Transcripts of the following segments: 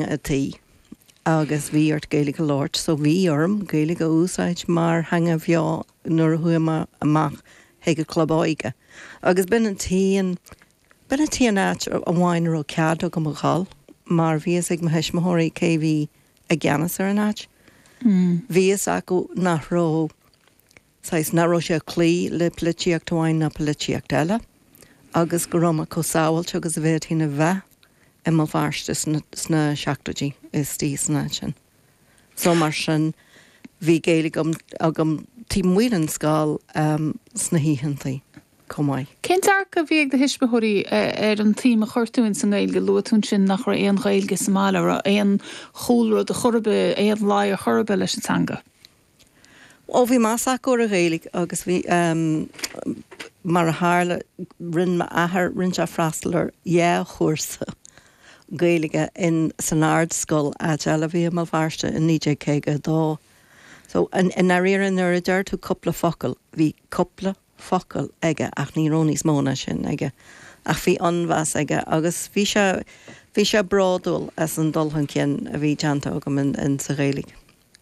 a tí agus bhí ort Gaeilge a labhairt, so bhí orm Gaeilge a úsáid mar theanga bheo nuair a chuaigh mé amach chuig an club óige agus b'in an t-aon, b'in an t-aon áit amháin a raibh cead agam a dhul mar bhí fhios ag mo thuismitheoirí cé a bhí i gceannas ar an áit. Bhí fhios acu nach raibh. saghas nach raibh sé ag cloí le polaitíocht amháin ná polaitíocht eile, agus go raibh mé chomh sábháilte agus a bhféadfainn a bheith i mBéal Feirste sna seachtóidí istigh san áit sin. So, mar sin, bhí Gaeilge agam taobh amuigh den scoil sna hoícheantaí chomh maith. Cén dearcadh a bhí ag do thuismitheoirí ar an tsuim a chuir tú insan nGaeilge? Luaigh tú ansin nach raibh aon Ghaeilge sa mbaile, an raibh aon chúlra ar chor ar bith, aon luí ar chor ar bith leis an teanga? Ó bhí meas acu ar an Ghaeilge agus bhí, mar a tharla, rinne m'athair, rinne sé freastal ar dhá chúrsa Gaeilge in, san Ardscoil Adel a bhí i mBéal Feirste in 1952. So, i ndáiríre nuair a deir tú cúpla focal, bhí cúpla focal aige ach ní raibh níos mó ná sin aige. Ach bhí an-mheas aige agus bhí sé, bhí sé bródúil as an dul chun cinn a bhí déanta agam in, sa Ghaeilge.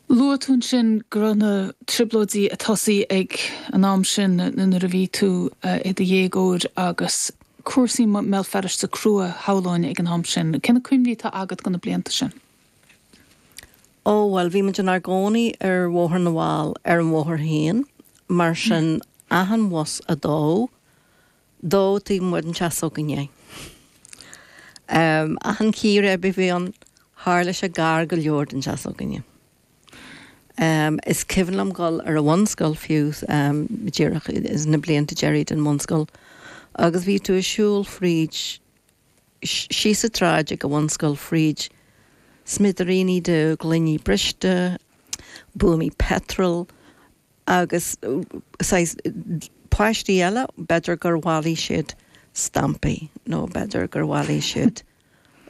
Luaigh tú ansin go raibh na Trioblóidí ag tosaí ag an am sin, nuair a bhí tú i do dhéagóir agus cúrsaí i mBéal Feirste crua, shamhlóinn, ag an am sin. Cé na cuimhní atá agat de na blianta sin? Ó, bhuel, bhí muid inár gcónaí ar Bhóthar na bhFál, ar an bhóthar féin, mar sin, achan bhus a dódh, dódh taobh amuigh den teach s'againne é. Achan chíréib a bhí ann, tharla sé gar go leor don teach s'againne. Is cuimhin liom dhul ar an bhunscoil fiú, díreach sna blianta deiridh den bhunscoil, agus bhí tú ag siúl fríd, síos sa tsráid ag an bhunscoil, fríd smidiríní de ghloiní briste, buamaí peitril, Agus saghas páistí eile, b'fhéidir gur bhailigh siad stampaí nó b'fhéidir gur bhailigh siad,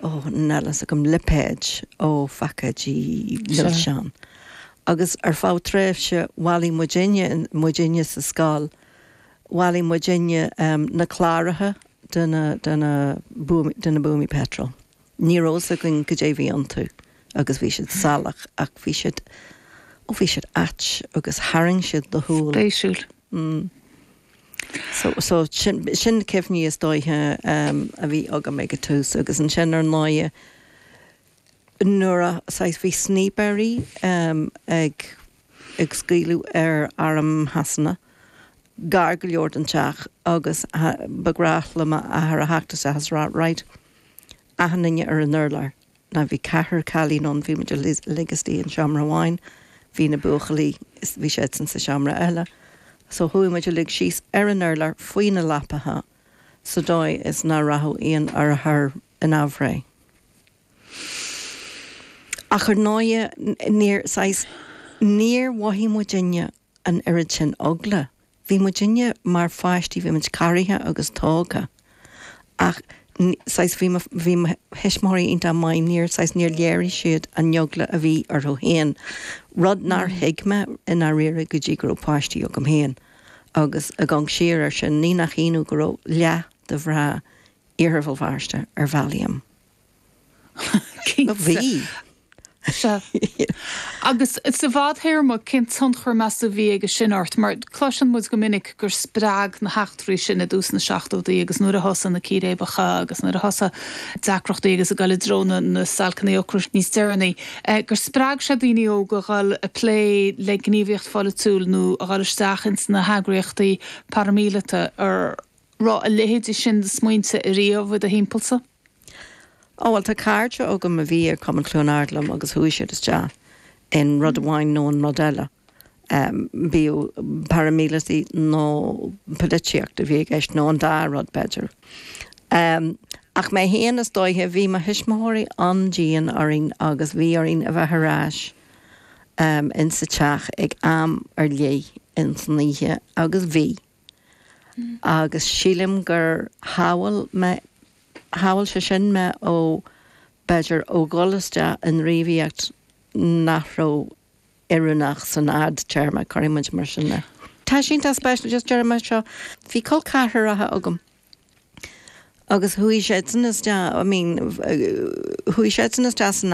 ó, níl a fhios agam, lipéid ó phacáidí milseán. Agus ar feadh tréimhse bhailigh muidinne, muidinne sa scoil, bhailigh muidinne na cláracha de na, de na, de na buamaí peitril. Ní raibh fhios againn goidé bhí iontu agus bhí siad salach ach bhí siad, ó bhí siad ait agus tharraing siad do shúil. Spéisiúil. Mm. So, so sin, sin na cuimhní is dóiche a bhí agam ag an tús agus ansin ar ndóighe nuair a, saghas, bhí snípéirí ag, ag scaoileadh ar arm Shasana gar go leor don teach agus ba ghnáth le m'athair a theacht isteach agus a rá right, achan duine ar an urlár. Now bhí ceathrar cailín ann, bhí muid uilig istigh in seomra amháin, bhí na buachaillí, bhí siadsan sa seomra eile. So chuaigh muid uilig síos ar an urlár faoi na leapacha sa dóigh is nach rachadh aon urchar in aimhréidh. Ach ar ndóighe níor, saghas, níor mhothaigh muidinne an oiread sin eagla Bhí muidinne mar pháistí, bhí muid corraithe agus tógtha ach saghas bhí mo, bhí mo thuismitheoirí iontach maith, níor, saghas níor léirigh siad an eagla a bhí orthu fhéin, rud nár thuig mé i ndáiríre go dtí go raibh páistí agam fhéin agus ag amharc siar air sin, ní nach ionadh go raibh leath de mhná Iarthar Bhéal Feirste ar Valium. Cinnte. Sea. Agus sa bhfadthéarma, cén tionchar, meas tú, a bhí aige sin ort? Mar cloiseann muid go minic gur spreag na heachtraí sin i dtús na seachtódaí agus nuair a thosaigh na círéibeacha agus nuair a thosaigh deacrachtaí agus ag dul i dtreo na stailceanna ocrais níos deireanaí, gur spreag sé daoine óga a dhul ag plé le gníomhaíocht pholaitiúil nó a dhul isteach ins na heagraíochtaí paraimíleata. raibh a leithéidí sin de smaointe ariamh i do thimpeallsa? Á, bhuel, tá cairde agam a bhí ag Cumann Chluain Ard liom agus chuaigh siad isteach in rud amháin nó in rud eile, bíodh paraimíleataigh nó polaitíocht a bhí i gceist, nó an dá rud, b'fhéidir. Ach mé féin, is dóiche, bhí mo thuismitheoirí an-dian orainn agus bhí orainn a bheith ar ais insa teach ag am ar leith insan oíche, agus bhí. agus sílim gur shábháil mé, shábháil sé sin mé ó, b'fhéidir, ó dhul isteach i ngníomhaíocht nach raibh oiriúnach san fhadtéarma, cuirfidh muid mar sin é. Tá sin, tá sé spéisiúil, just déarfainn seo, bhí col ceathracha agam agus chuaigh siadsan isteach, I mean, chuaigh siadsan isteach san,